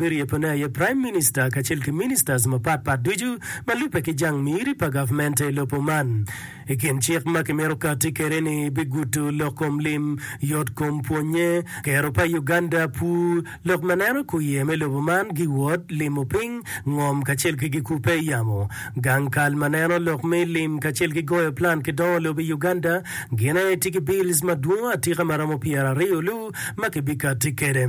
Biryebone aye Prime Minister kacel ki Ministers mapat pat ducu ma lubbe ki jang miri pa gavmente i lobo man. I kin cik ma kimito kati kwede ni bigudo lok kom lim, yot kom pwonye, kero pa Uganda pur, lok ma neno kuye me lobo man, giwot, limo piny, ngom kacel ki gikubbe i yamo, gang kal ma neno lok me lim kacel ki goyo plan ki dongo lobo i Uganda, gin aye tiki bills madwongo atika ma romo pyeraryo lu ma kibikati kwede.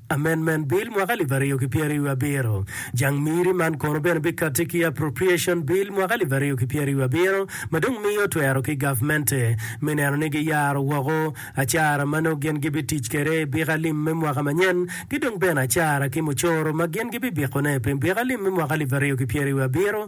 Amendment Bill mwaka alip aryo ki pyeraryo wiye abiro, Jang Miri, man kono bene bikatti ki Appropriation Bill mwaka alip aryo ki pyeraryo wiye abiro ma dong miyo twero ki gavmente me neno ni giyaro woko acara ma nongo gin gibitic kwede i biko alim me mwaka manyen ki dong bene acara ki mucoro ma gin gibibikone pi biko alim me mwaka alip aryo ki pyeraryo wiye abiro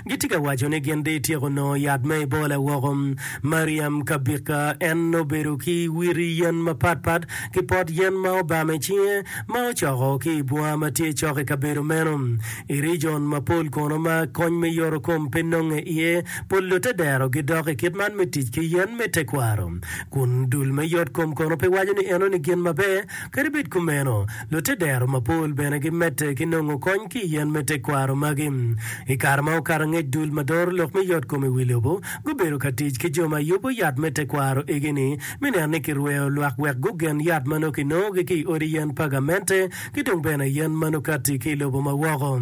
Gitye ka waco ni gin dong ityeko nongo yat ma ibola woko. Mariam Kabika, En obedo ki witi yen mapat pat ki pot yen ma obam i cinge ma ocoko ki i bunga ma tye cok i kabedo meno. I rijon mapol kono ma kony me yorokom pe nonge iye, pol lutte dero gidok i kit man me tic ki yen me tekwaro. Kun dul me yotkom kono pe waco ni enoni gin maber. Kadi bed kumeno, lutedero mapol bene gimedde ki nongo kony ki i yen me tekwaro magi. I kare ma okato angec dul ma doro lok me yotkom i wi lobo gubedo ka tic ki jo ma yubo yat me tekwaro igi-ni me neno ni kirweyo lwak wek gugen yat ma nongo kinongogi ki i odi yen pa gamente ki dong bene yen ma nongo kati ki i lobo ma woko.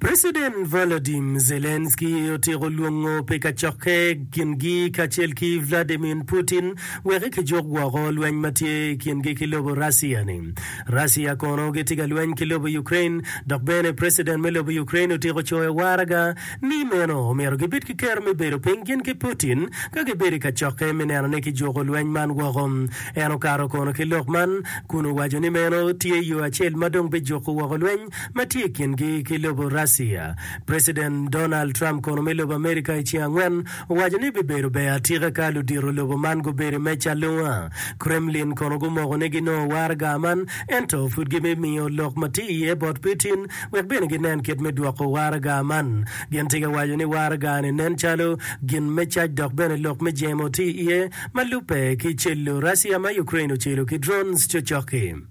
President Volodim Zelensky otyeko lwongo pi kacokke kingi kacel ki Vladimir Putin weki kijuk woko lweny ma tye i kingi ki lobo Russia ni. Russia kono gitye ka lweny ki lobo Ukraine dok bene President me lobo Ukraine otyeko coyo waraga ni meno omyero gibed ki kero me bedo piny gin ki Putin ka gibedo i kacokke me neno ni kijuko lweny man woko. En okato kono ki lok man kun owaco ni meno tye yo acel ma dong bijuko woko lweny ma tye i kingi ki lobo Russia. Preciden Donald Trump kono me lobo Amerika i ceng angwen owaco ni bibedo ber atika ka ludito lobo man gubedo i meja alunga. Kremlin kono gumoko ni ginongo waraga man ento pud gibimiyo lok ma tye iye bot Putin wek bene ginen kit me dwoko waraga man. Gin tika waco ni waraga-ni nen calo gin me cac dok bene lok me jemo tye iye ma lubbe ki celo Russia ma Ukraine ocelo ki drones cocok-ki.